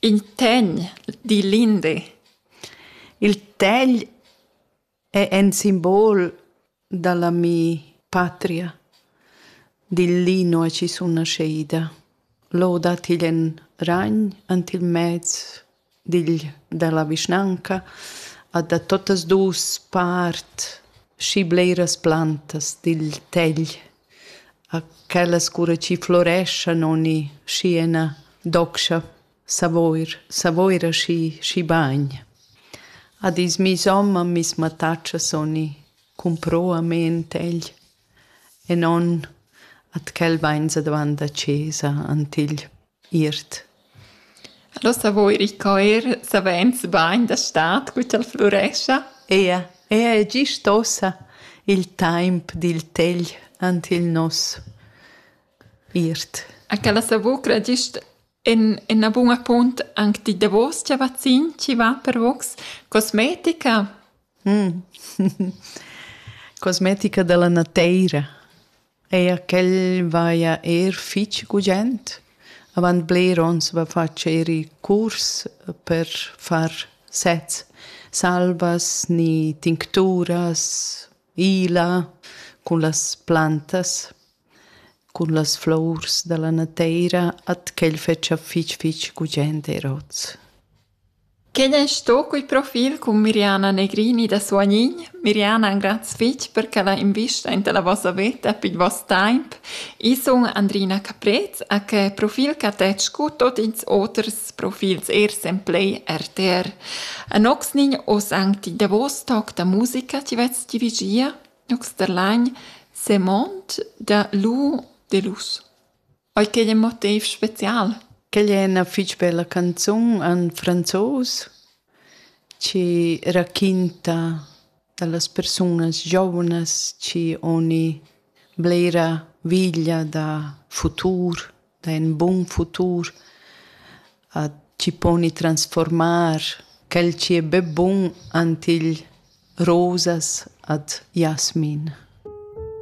In tegn, di Linde. Il tegl è in simbol da la mi patria, digl Lino è chi sun nascheida. Lò dat igl en ragn ant il mez digl da la vischnanca a da tuttas dus part schi bleras plantas digl tegl. A quellas cura chi floreschan ogni schi ena docscha Savoir, Savoira schi, schi bagn. A dis miss homma miss mattatschas ogni cumpruamaint egl e non at quel vainsa davant da chesa ant igl. Iert. Alura savo ir in coer savains bain da stad cu ch'el flurescha. Eir, eir è gist ossa il taimp dil tegl ant il nos iert. A quella savocra gist en ena buna punt anc di davos cha vazzin chi va per vogs cosmetica. Cosmetica da la nateira. Eir quel vaja eir fich gugent. Avant bler ons va facher i curs per far sets, salvas ni tincturas, ila cun las plantas, cun las flours da la nateira, at quel fetscha fich fich gugent eir hoz. Quei ei sto quei profil cun Miriana Negrini da Suagnin. Miriana, graz fetg per ch'ella investa enta la vossa veta pil vast temps. Io sun Andrina Caprez e quei profil cattet sco tot ils oters profils er semplei rtr. Anoxnin oz anc ti davos toc da musica ti vets dirigia, Nox der Lain, Semond da Lu Delus. Ei ch'ei in motiv special. Quel è ina fitg bella canzun en franzos che raquinta dallas persunas giovnas che oni blera veglia da futur, da in bun futur, a chi poni transformar quel chi è be bun ant igl rosas ad jasmin.